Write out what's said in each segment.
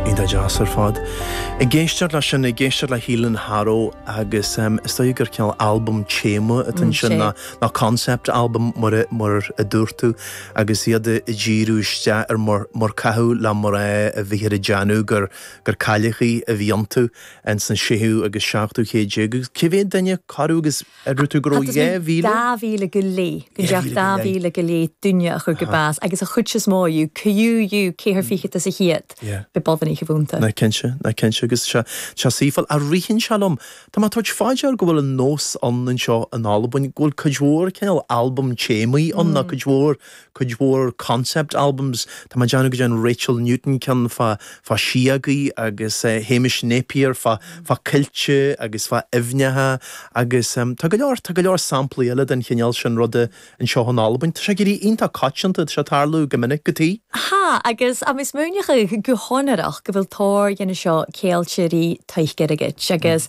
Iontach deas ar fad. Ag éisteacht leis sin, ag éisteacht le Heal and Harrow agus em, is dóigh gur cineál albam téama atá ansin nó nó concept album mar mar a dúirt tú agus iad ag díriú isteach ar mar mar caitheadh le mná a bhíthear ag déanamh gur gur cailleachaí a bhí iontu ins an séú agus seachtú céad déag agus cé mhéad duine cabhrú agus Ar dhúirt tú go raibh dhá mhíle? Dhá mhíle gu leth, gun deach dà mhìle gu leth duine a chur gu bàs agus a' chuid as motha dhiubh, co-dhiù ceithir fichead às a' cheud, b' e boireannaich a bh' annta. Nach cinnte, nach cinnte agus sea, so, bhuel, ritheann sé liom, tá mé ag tabhairt fá dear go bhfuil an nós ann anseo in Albain go bhfuil cuid mhór cineál albam téamaí ann nó cuid mhór, cuid mhór concept albums. Tá mé ag déanamh go dtearn Rachel Newton ceann fá fá síogaí agus Hamish Napier fá fá coillte agus fá aibhneacha agus tá go leor tá go leor samplaí eile den chineál sin ruda anseo in Albain. Tá sé ag éirí iontach coitianta, tá sé ag tarlú go minic go. Tha, agus tha mi smaoineachadh gu sònraichte gu bheil tòrr dhe na seo ceangailte ri taic-airgid agus.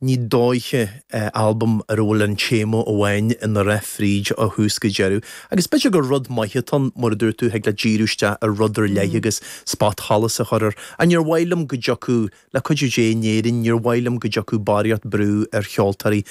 Ní dóiche, albam ar a bhfuil an téama amháin ina rith fríd ó thús go deireadh. Agus b'fhéidir gur rud maith atá ann, mar a dúirt tú, thig leat díriú isteach ar rud ar leith agus spotsholas a chur air. Ach níor mhaith liom go dtiocfadh, le cuidiú Dé, in Éirinn, níor mhaith liom go dtiocfadh barraíocht brú ar cheoltóirí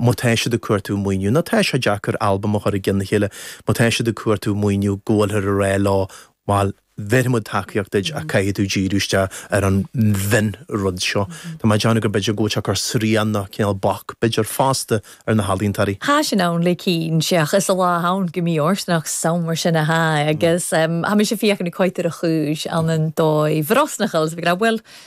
má tá siad ag cuartú maoiniú, nó tá sé deacair albam a chur i gceann a chéile má tá siad ag cuartú maoiniú, go bhfuilthear ag rá leo, bhuel, bhéarfaimid tacaíocht duit ach caithfidh tú díriú isteach ar an mhionrud seo. Tá mé ag déanamh gur b'fhéidir go bhfuil sé ag cur srian nó cineál bac, b'fhéidir, fosta ar na healaíontóirí. Tha sin ann le cinnt, ach 's a lá ann go mbíodh ort nach samhradh sin a thá agus tha mise a' feuchainn ri coimhead air a' chùis ann an dòigh bhrosnachail 's a bhith ag ràdh, uill,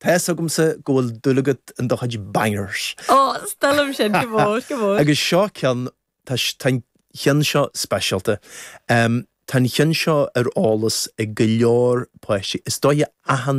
Tá a fhios agamsa go bhfuil dúil agat in do chuid bangers. Ò, 's toil leam sin, gu mòr, gu mòr. Agus seo ceann, tá an cheann seo speisialta. Tá an cheann seo ar eolas ag go leor páistí, is dóiche achan.